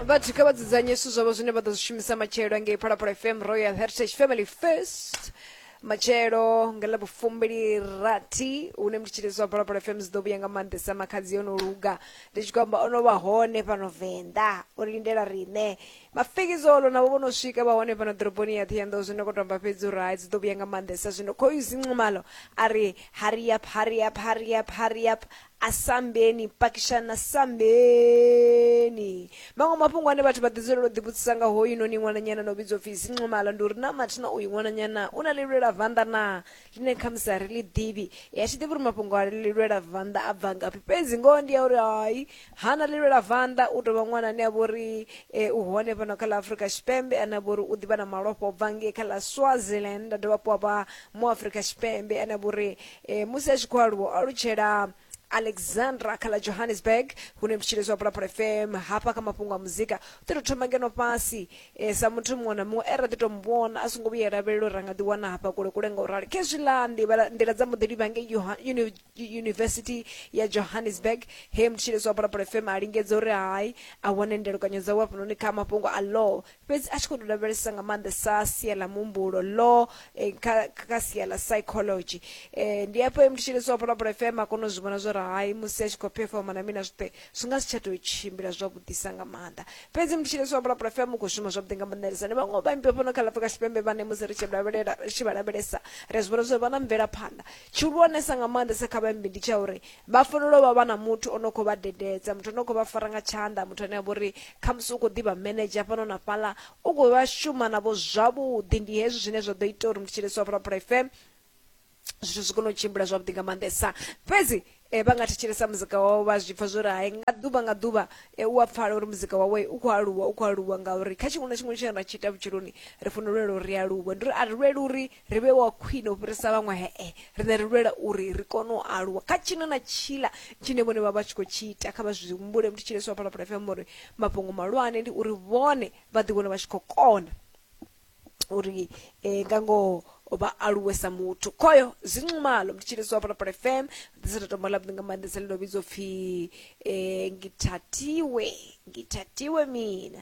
vhathu kha vha dzudzanye zwithu zwavho zwine vha ḓo zwi shumisa matshelo ngei phalaphala fm royal heritage family first matshelo nga ḽa vhufumbili rathi hune mutshitsheledzo wa phalaphala fm dzi ḓo vhuya nga maanḓesa makhadzi yo no luga ndi tshi khou amba o no vha hone fhano venḓa o lindela riṋe mafekizolo navho vho no swika vha hone fhano ḓoroboni ya ṱhiyanḓou zwino khou tou amba fhedzi uri hai dzi ḓo vhuya nga maanḓesa zwino khoyu zinqumalo a ri hurry up hurry up hurry up hurry up asambeni pakishani na sambeni maṅwe mafhungo ane vhathu vha ḓi dzulela u ḓivhudzisa nga hoyu noni ṅwananyana no vhidzwa upfi zincomala ndi uri na mathina uyu ṅwananyana u na lilwela vanḓa na ḽine khamusi a ri ḽi ḓivhi ya tshi ḓivhi uri mafhungo a lilwela vanḓa a bva ngafhi fhedzi ngoho ndi ya uri hai ha na lilwela vanḓa u tovha ṅwana ane a vha uri e, u hone fhano kha ḽa afurika tshipembe ane a vha uri u ḓivha na malofha u bva ngei kha ḽa swaziland a dovha hafhu a vha mu afurika tshipembe ane a vha uri E, musi a tshi khou aluwa o alutshela alexandra kha ḽa johannesburg hune mutshilezi wa pulapula fm hafha kha mafhungo a muzika u ḓi tou thoma ngeno fhasi e, sa muthu muṅwe na muṅwe e ra ḓi tou mu vhona a songo vhuya lavhelela uri ra nga ḓi wana hafha kule kule nga u rali khezwiḽa nḓivha- nḓila dza muḓi livha ngei Joha- Uni- yunivesithi ya johannesburg he mutshilezi wa pulapula fm a lingedza uri hai a wane ndelukanyo dzawe hafhanoni kha mafhungo a law fhedzi a tshi khou tou lavhelesesa nga maanḓesa sia ḽa muhumbulo ḽo eh, kha kha sia ḽa psychology eh, ndi afho muthu tshi lisiwa phalaphala fm a kona u zwi vhona zwa uri hai musi a tshi khou performa na mina zwoṱhe zwi nga si tsha tou tshimbila zwavhuḓisa nga maanḓa fhedzi muthu tshi lisiwa phalaphala fm u khou shuma zwavhuḓi nga maanḓelesa ndi vhaṅwe vhaimbi vha fhano kha ḽafrika tshipembe vhane musi ri tshi lavhelela ri tshi vha lavhelesa ri a zwi vhona zwa uri vha na mvelaphanḓa tshihulwanesa nga maanḓesa kha vhaimbi ndi tsha uri vha fanela u vha vha na muthu o no khou vha dededza muthu o no khou vha fara nga tshanḓa muthu ane a vha uri khamusi u khou ḓivha manager fhano na fhaḽa u khou vha shuma navho zwavhuḓi ndi hezwi zwine zwa ḓo ita uri muthetshelesi wa phalaphala f m zwithu zwi kone u tshimbila zwavhuḓi nga maanḓesa fhedzi um vha nga thetshelesa muzika wawe vha zwi pfha zwo ri hai nga ḓuvha nga ḓuvha um u a pfala uri muzika wawe u khou aluwa u khou aluwa ngauri kha tshiṅwe na tshiṅwe tshine ra tshi ita vhutshiloni ri fanela u lwela uri ri aluwe ndi uri a ri lweli uri ri vhe wa khwine u fhirisa vhaṅwe hee riṋe ri lwela uri ri kone u aluwa kha tshino na tshila tshine vhone vha vha tshi khou tshi ita kha vha zwi humbule muthu tshileswa phalaphala fm uri mafhungo malwane ndi uri vhone vha ḓivhona vha tshi khou kona uri eh, nga ngoho vha aluwe sa muthu khoyo zinxumalo ndi tshilisi wa phalaphala fm ḓisita tombo ḽavhuḓi nga maanḓesa ḽi ndo vhidzwa upfhi eh, ngithatiwe ngithatiwe mina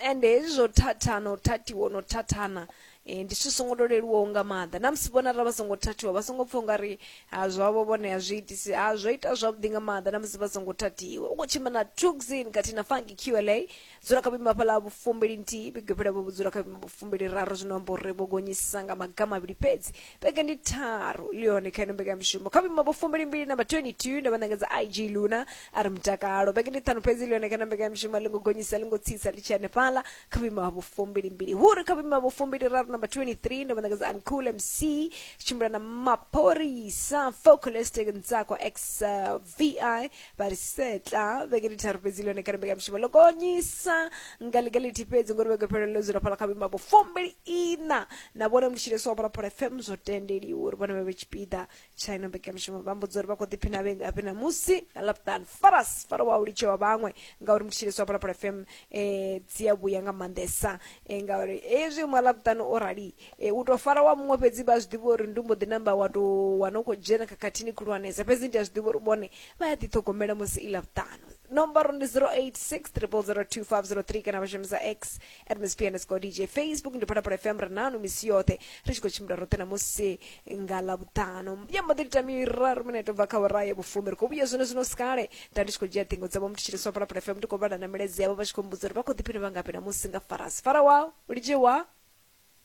ende hezwi zwo thathana u thathiwa no thathana Ee, ndi zwithu zwi songo to leluwaho nga maanḓa na musi vhona arali vha songo thathiwa vha songo pfha ungari ha zwavho vhone a zwi itisi ha zwo ita zwavhuḓi nga maanḓa na musi vha songo thathiwa u khou tshimbila na tuxin khathihi na funky qla dzula kha vhuimo hafhaḽa vhufumbili nthihi vhege phela vho dzula kha vhuimo vhufumbili raru zwino amba uri vho gonyisisa nga maga mavhili fhedzi vhege ndi tharu ḽi hone kha ino mbekanyamushumo kha vhuimo vhufumbili mbili namba 22 nda vha ṋangadza ig luna a ri mutakalo vhege ndi ṱhanu fhedzi ḽi hone kha ino mbekanyamushumo a ḽi ngo gonyisa a ḽi ngo tsitsa ḽi tshi hanefhaḽa kha vhuimo ha vhufumbili mbili huri kha vhuimo ha vhufumbili raru number 23 ndo vhanakadza uncool mc tshimbila na mapholisa focolistic ntsakwa x uh, vi vha ri setla vhege ndi tharu fhedzi lone kha rembeka mushumo ḽo gonyisa nga ḽiga ḽithihi fhedzi ngori vhege phelelo ḽo dzula fhala kha vhuimo ha vhufumbili ina na vhone mutshileswa wa phalaphala fm zwo tendeliwa uri vhone vha vhe tshipiḓa tsha ino mbekamishumo vha mbudza uri vha khou ḓiphina vhe ngafhi ṋamusi na laptan faras fara wa u litshe wa vhaṅwe ngauri mutshitshiliso wa phalaphala fm um eh, dzi a vhuya nga maanḓesa um ngauri hezwi mwa laptan o rali um u tou fara wa muṅwe fhedzi vha zwi ḓivha uri ndi mbo ḓi namba wa tou wana u khou dzhena khakhathini khulwanesa fhedzi ndi a zwi ḓivha uri vhone vha ya ḓiṱhogomela musi i laptano nomboro ndi 086 0002503 kana vha shumisa x msp underscore dj facebook ndi pata pa fm rananu misi yoṱhe ri tshi khou tshimbila roṱhe namusi nga ḽavhuṱanu ya mbaḓo ita miraru mine to bva kha ora ya vhufumi ri khou vhuya zwone zwino sikale nda ndi tshi khou dzhia ṱhingo dzavho muthu tshiriswa pala pala fm ndi khou vhala na milaedza yavho vha tshi khou mbudza uri vha khou ḓiphina vha ngafhi namusi nga farasi fara wao lidze wao